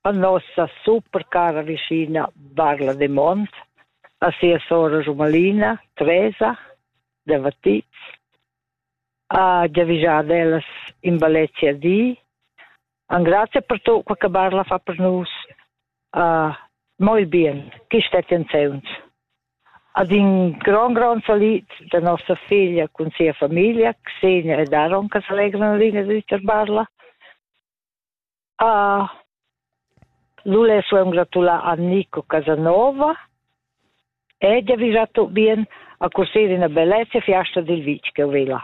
A nossa supercara vischina Barla Demont, a sia sora Rumalina, Tresa, de Vatitz, a giavischar ellas in balletje a di. An grazie per tot quel che Barla fa per nus. Uh, molt bien, chi stet enseunz. Ad in gran gran salit de nostra figlia con sia famiglia, Xenia e Daron, che s'allegrano linea di Barla. Lule soem gratulà a Nico Casanova ed avisà tut bien a cursir üna bellezza fiasta dil vitg che vela.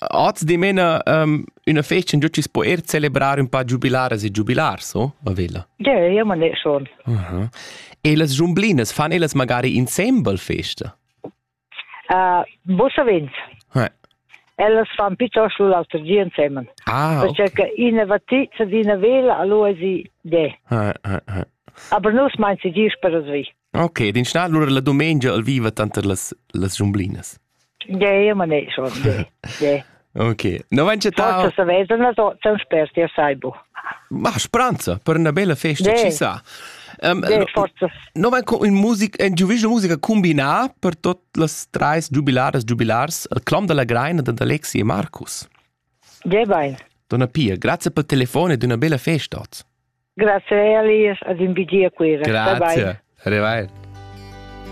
Oz dimena um, üna festa in giucis po er celebrar un pa giubilaras e giubilars, o? A Vela? Ja, ja, man è schon. Uh -huh. E las giumblinas fan elas magari insembel festa? Uh, vos savens. Ouais. Ellas fan piuttost l'auter di ensemen. Ah. Perché che ina va ti, se ina vela, allora si de. Ah, ah, ah. Aber nus meinen sie dies per das wie. Ok, din sta allora la domenica al viva tanter las las giumblinas. Ja, ja, ma ne, schon. De. de. Ok. No vain chattau Forsa savais da las ozzas per tia saibo. Ma spranza, per una bella festa, ci sa. Um, no, no vain con musica, in giuviscio musica combinà per tot las trais giubilaras giubilars, il clom della Greina d'Alexi e Marcus. Ja bain. Donna Pia, grazie per telefone ed una bella festa oz. Grazie a Elias ad invidia quera. Grazie. Arrivai.